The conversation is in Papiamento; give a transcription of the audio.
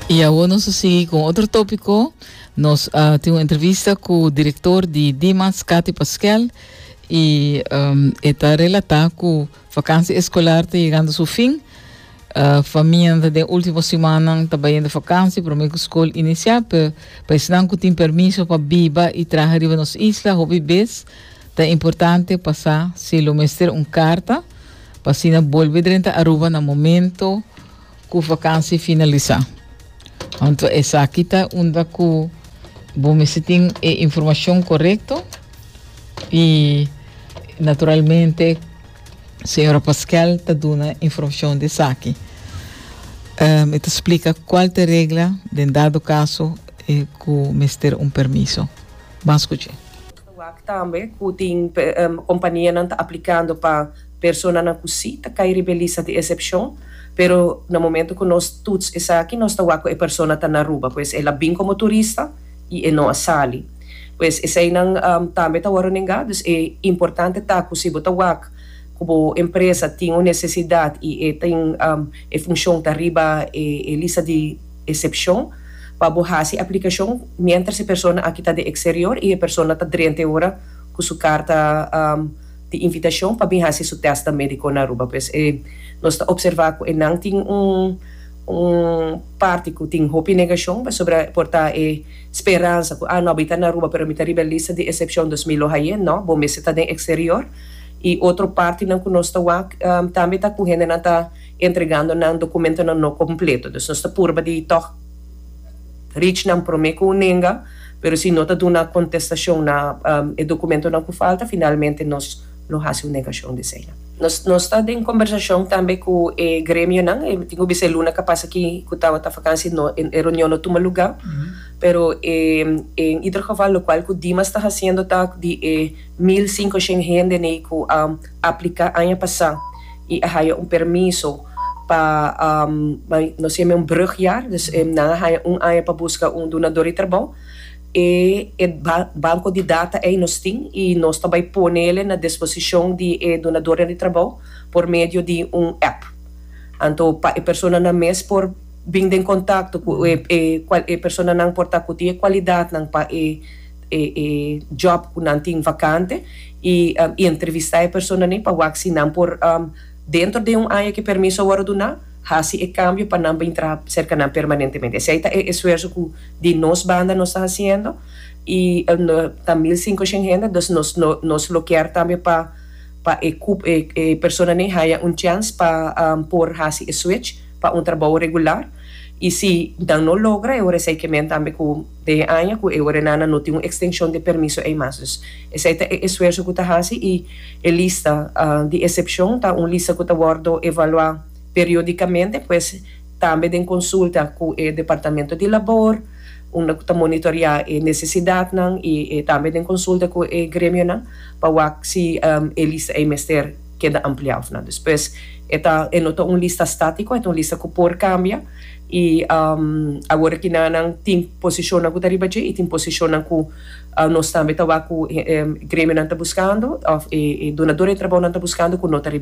Y awor nos a sigui con otro tópico. Nos a tin un entrevista cu director di DMATS, Cathy Pasquel, y um, e ta relatá cu vakantie escolar ta yegando su fin. Uh, famianan den último simannan ta bayendo vakantie, promé cu scol inicia, pero pa esnan cu tin permiso pa biba y traha riba nos isla, hopi bes ta importante pasá, si lo mester, un carta. pa asina bolbe drenta Aruba na momento cu vakansi finalisa. Anto esaki ta unda cu bo mester tin e informacion corecto y naturalmente Señora Pasquel ta duna informacion di esaki. Um, e ta explica cual ta regla den dado caso eh, cu mester un permiso. Ban scuch'e. Wak tambe ku tin kompanianan ta aplikando pa personanan ku si ta kai riba e lista di esepshon, pero na momentu ku nos tuts esaki nos ta wak ku e persona ta na Aruba, pues el a bin komo turista i e no a sali. Pues eseinan tambe ta wòrdu nengá, dus e importante ta ku si bo ta wak ku bo empresa tin un nesesidat i e tin e funshon ta riba e lista di. Excepcion, Pa bo haci aplicacion mientras e persona aki ta den exterior y e persona ta drente ora cu su carta di invitacion pa bin haci su test medico na Aruba pues nos ta observa cu enan tin un parti cu tin hopi negacion pasobra por ta e speransa cu ah no mi ta na Aruba pero mi ta riba e lista di excepcion dus mi lo haye no bo mester ta den exterior y otro partinan cu nos ta wak tambe ta cu hendenan ta Entregando nan documentonan no completo. Dus nos ta purba di tog reach nan prome cu un nenga, pero si no ta duna contestacion na e documentonan cu falta, finalmente nos lo haci un negacion di esey. Nos nos ta den conversacion tambe cu e gremionan. E tin cu bisa e luna ca pasa aki cu tabata vakansi no e reunion no tuma lugar, pero e en ieder geval locual cu Dimas ta haciendo ta di e mil cincoshen hende nei cu a. aplica aña pasa y a haya un permiso pa nos yama un brugjaar dus nan a haya un aña pa busca un dunador di trabou e e banco di data ey nos tin y nos ta bay ponele na disposicion di e dunadornan di trabou por medio di un app anto pa e personanan mes por bin den contacto cu e personanan por ta cu tin e cualidadnan pa e e job ku nan tin vakante i entrevistá e personanan pa wak si nan por dentro den un aña ku e permiso a wòrdu duná hasi e kambio pa nan bin traha serka nan permanentemente. Esei ta e esfuerso ku di nos banda nos ta hasiendo i ta mil sinkoshèn hende dus nos nos lo kier tambe pa pa e kup e personanan haña un chèns pa por hasi e switch pa un trabou regular i si nan no logra e ora esei ke men tambe ku Den e aña ku e orenana no tin un ekstenshon di e permiso ei mas. Dus esei ta e esuerso ku ta hasi i e lista di esepshon ta un lista ku ta wòrdu evaluá periodikamente pues tambe den konsulta ku e departamento di labor unda ku ta monitoriá e nesesidatnan i tambe den konsulta ku e gremionan pa wak si e lista ei mester keda ampliá òf no. Dus pues e ta e no ta un lista státiko e ta un lista ku por kambia. i awor aki nannan tin posishonnan ku ta riba dje i tin posishonnan ku nos tambe ta wak ku e gremionan ta buskando òf e dunador di trabounan ta buskando ku no ta riba.